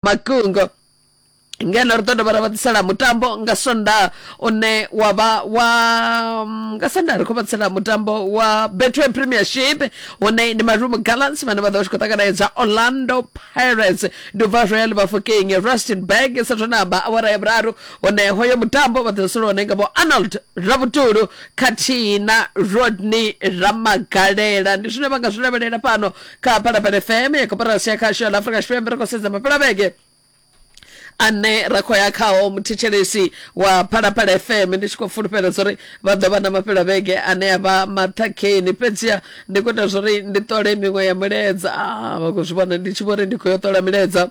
makungo ngeno ri ḓo dovha ra vha ḓisela mutambo nga sonda une wa vha wa mm, nga sonda ri khou vha ḓisela mutambo wa betway premiership une ndi marumo gallants vhane vha ḓo vha tshi khou ṱanganedza orlando pirates duvha royal bafokeng rustenburg sathonamba awara ya vhuraru hone hoyo mutambo vha ḓo solo hone nga vho arnold rabutulu khathihi na rodney ramagalela ndi zwine vha nga zwi lavhelela fhano kapala pele fm ya kopera sia khasho la afrika tshipembe ri khou sedza mapela vhege ane ra khou ya khao muthetshelesi wa phalaphala fm ndi tshi khou fulufhela zwa uri vha ḓo vha na mafhela vhege ane a vha maṱhakheni fhedziha ndi khou ita zwa uri ndi ṱole miṅwe ya milaedza Ah, vha khou zwi vhona ndi tshi vho ri ndi khou yo ṱola milaedza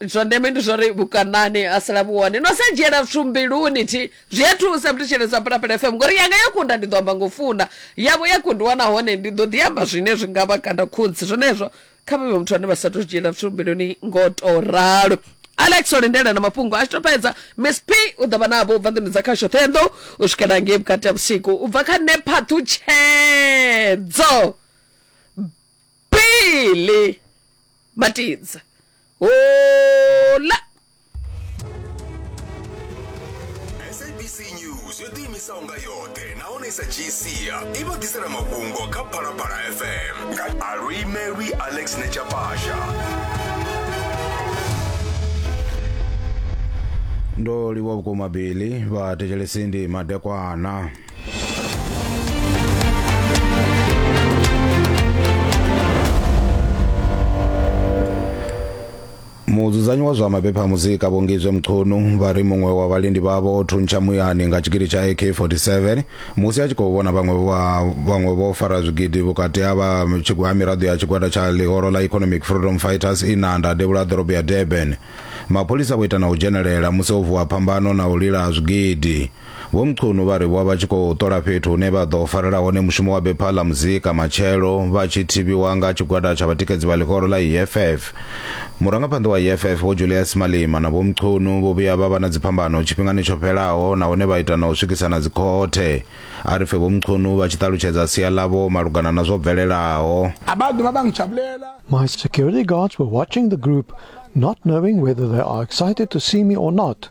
zwa ndeme ndi zwori vhukanani ha sala vhu hone no sa dzhiela zwithu mbiluni thi zwi a thusa mthetsheledzwa phalaphala fm ngori yanga yo kunda ndi ḓo amba ngo funa yavho ya kundiwa nahone ndi ḓo ḓi amba zwine zwi nga vha kanda khudzi zwenezwo kha vhavhe muthu ane vha sa to dzhiela zwithu mbiluni ngo to ralo alex o lindela na mafhungo a tshi to fhedza miss p u ḓo vha navho u bva nḓuni dza khasho ṱhenḓo u swikela ngei vhukati ha vhusiku u bva kha nephathu tshedzo pele batidza hola sabc news yo ḓiimisaho nga yoṱhe nahone sa gcia i vha ḓisela mafhungo kha phalaphala fm nga alwi mary alex nechapasha ndo livhuwa vhukuma bili vhathetshelesi ndi madekwana mudzudzanyi wa zwa mabepha a muzika vhongizwe mchunu vha ri muṅwe wa vhalindi vhavho o thuntsha muyani nga tshigidi tsha ak-47 musi a tshi khou vhona vhaṅwe vha- vhaṅwe vho fara zwigidi vhukati ha vha tshigwa- ha miraḓo ya tshigwada tsha ḽihoro ḽa economic freedom fighters inanda devhula ḓorobo ya durban mapholisa vho ita na u dzhenelela musi ho vuwa phambano na u lila ha zwigidi Vho Mchunu vha ri vho vha tshi khou ṱola fhethu hune vha ḓo farela hone mushumo wa bepha ḽa muzika matshelo vha tshi thivhiwa nga tshigwada tsha vhatikedzi vha ḽihoro ḽa EFF. Murangaphanḓa wa EFF Vho Julius Malema na Vho Mchunu vho vhuya vha vha na dziphambano tshifhingani tsho fhelaho nahone vha ita na u swikisana dzikhothe. A ri pfe Vho Mchunu vha tshi ṱalutshedza sia ḽavho malugana na zwo bvelelaho. My security guards were watching the group not knowing whether they are excited to see me or not.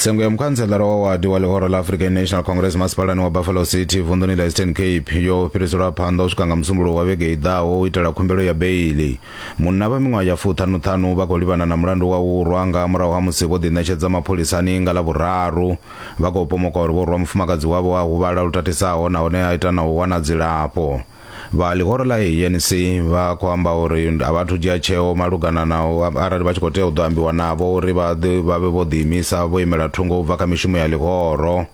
tsengo ya mukhantselara wa wadi wa ḽihoro ḽa african national congress masipalani wa buffalo city vunḓuni ḽa eastern cape yo fhiriselwa phanḓa u swika nga musumbuluwo wa vhege i ḓaho u itela khumbelo ya beili munna vha miṅwaha ya fuṱhanuṱhanu vha khou livhana na mulandu wa u rwa nga murahu ha musi vho ḓiṋetshedza mapholisani nga ḽa vhuraru vha khou pomoka uri vho rwa mufumakadzi wavho a huvhala lu tatisaho nahone a ita na u wana dzilafho vha ḽihoro ḽa anc vha khou amba uri a vha thu dzhia tsheo malugana na arali vha tshi khou tea u ḓo ambiwa navho uri vha vha vhe vho ḓiimisa vho imela thungo u bva kha mishumo ya ḽihoro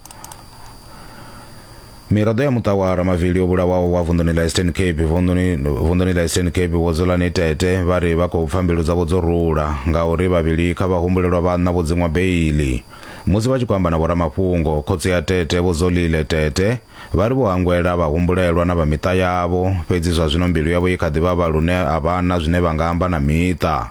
miraḓo ya muṱa wa ramavili yo vhulawaho wa vunḓuni ḽa eastern cape vunḓuni ḽa eastern cape vho dzulani tete vha ri vha khou pfa mbilu dzavho dzo rula ngauri vhavhili kha vhahumbulelwa vhanna vho dziṅwa beili musi vha tshi khou amba na vhoramafhungo khotsi ya tete vho dzolile tete Vha ri vho hangwela vhahumbulelwa na vha miṱa yavho, fhedzi zwa zwino mbilu yavho i kha ḓi vhavha lune a vha na zwine vha nga amba na miṱa.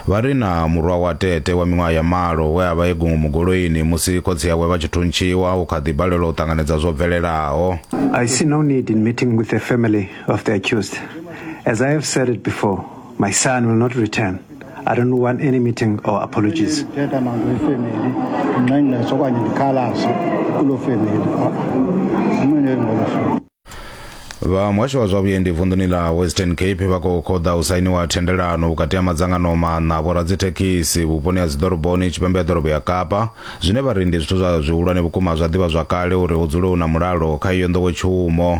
Vha ri na murwa wa Tete wa miṅwaha ya malo we a vha e gungumu goloini musi khotsi awe vha tshi thuntshiwa u kha ḓi balelwa u ṱanganedza zwo bvelelaho. I see no need in meeting with the family of the accused as I have said it before. My son will not return. I don't want any meeting or apologies. ndithetha nazo ifemeli ndinqengqesha okanye ndikhalaze kuloo femeli amene ngolo hlobo vha muhasho wa zwa vhuendi vunḓuni ḽa western cape vha khou khoḓa u sainiwa thendelano vhukati ha madzangano maṋa vhoradzithekhisi vhuponi ha dziḓoroboni tshipembe ya ḓorobo ya kapa zwine vha ri ndi zwithu zwa zwihulwane vhukuma zwa ḓivha zwakale uri hu dzule hu na mulalo kha iyo nḓowetshumo